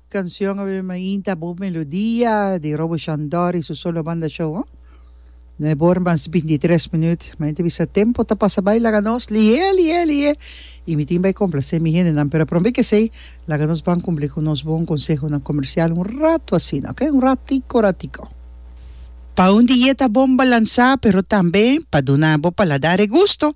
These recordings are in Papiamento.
Cancion a bem ainta bo melodia di Roboshon Dor y su solo banda show ho. No e bor mas binti tres minuut ma e ta bisa tempo ta pasa bay laga nos lihe lihe lihe y mi tin bay complace mi hendenan pero prome ke esey laga nos ban cumpli cu nos bon consehonan comercial un rato asina ok un ratico ratico. Pa un dieta bon balansa pero tambe pa duna bo paladar e gusto.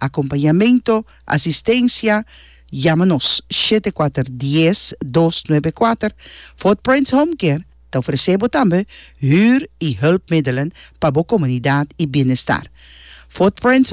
Acompañamento, Asistencia, Yama nos shete kuater dies dos nuebe kuater. Footprints Home Care ta ofrece bo tambe huur y hulpmiddelen pa bo comunidad y bienestar. Footprints.